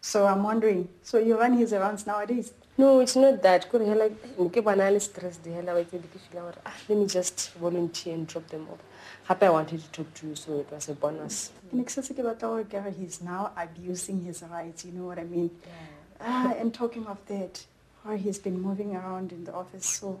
So I'm wondering, so you run his errands nowadays? No, it's not that. Could hela nke bana le stress di hela wa ke di feel gore ah let me just volunteer and drop them off. Happy I wanted to talk to you so it was a bonus. Nik se se ke batla gore kare he's now abusing his rights, you know what I mean? Yeah. Ah, and talking of that, or he's been moving around in the office so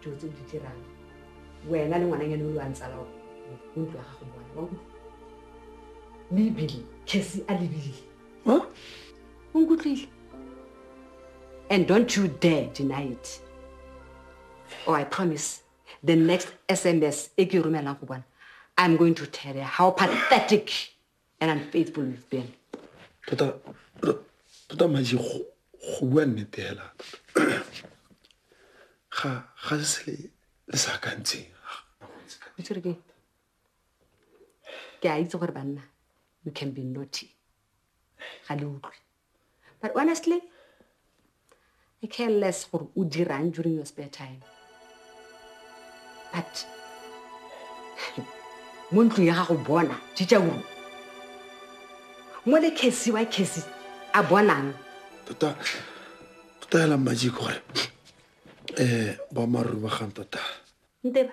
dilo tse o di dirang wena le ngwananyane o lo a ntsala o ntlo ya gago bona wa utlwa mme ebile case a lebile o nkutlwile and don't you dare deny it or i promise the next sms e ke e romelang go bona i'm going to tell her how pathetic and i'm faithful with ben tota tota maji go bua nnete hela ga ga se se le sa kantseng o tsere ke ke a itse gore banna you can be naughty ga le utlwe But honestly, I care less gore o dirang during your spare time. But mo ntlong ya gago bona tšitša uru mo le kesi wa kesi a bonang tota tota hela mmaji gore um boammaaruri ba gang tota nteba